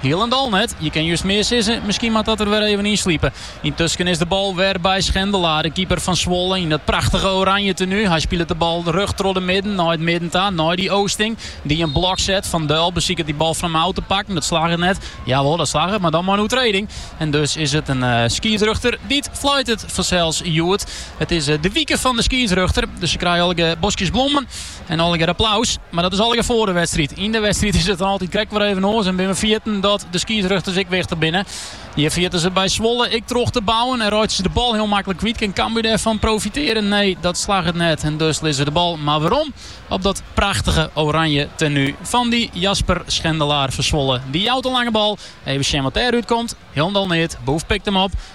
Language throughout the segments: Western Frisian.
Hielendal net. Je kin just mear sizze, miskien moat dat der wer even yn slipe. Yntusken is de bal wer by Schendelaar, de keeper fan Zwolle, yn dat prachtige oranje tenu. Hy spilet de bal rjocht troch de midden nei it midden ta, nei Dy Oosting, dy't in blok set. Van Duil besiket dy bal fan him ôf te pakken, dat slagget net. Jawol, dat slagget, mar dan mei in oertrêding. En dus is it in skiedsrjochter dy't fluitet. Fansels hjoed. It is de wike fan de skiedsrjochter, dus se krije allegear boskjes blommen. En allegear applaus, mar dat is allegear foar de wedstriid. Yn de wedstriid is it altyd krekt wer even oars en binne we fergetten dat de skiedsrjochters ek wichtich binne. Hjir ferjitte se by Zwolle ek troch te bouwen en reitsje se de bal hiel maklik kwyt. Kin Cambuur dêrfan profitearje? Nee, dat slagget net en dus lizze se de bal mar werom op dat prachtige oranje tenu fan dy Jasper Schendelaar fan Zwolle. Dy jout de lange bal, even sjen wat dêr út komt. Hielendal neat, Boef pikt him op.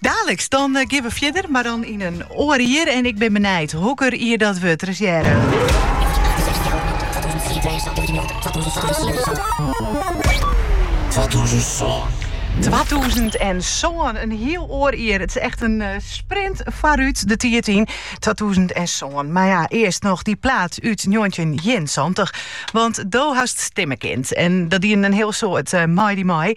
Daliks, dan gean we fierder, mar dan yn in oar jier en ik bin benijd hokker jier dat wurdt. Der is hearre. Twatûzen en sân, in hiel oar jier. It is echt in eh, sprint foarút de tiid yn. Twatûzen en sân. Mar ja, earst noch dy plaat út 1971. Want do hast stimme kind. En dat diene in hiel soad uh, Mighty Mai.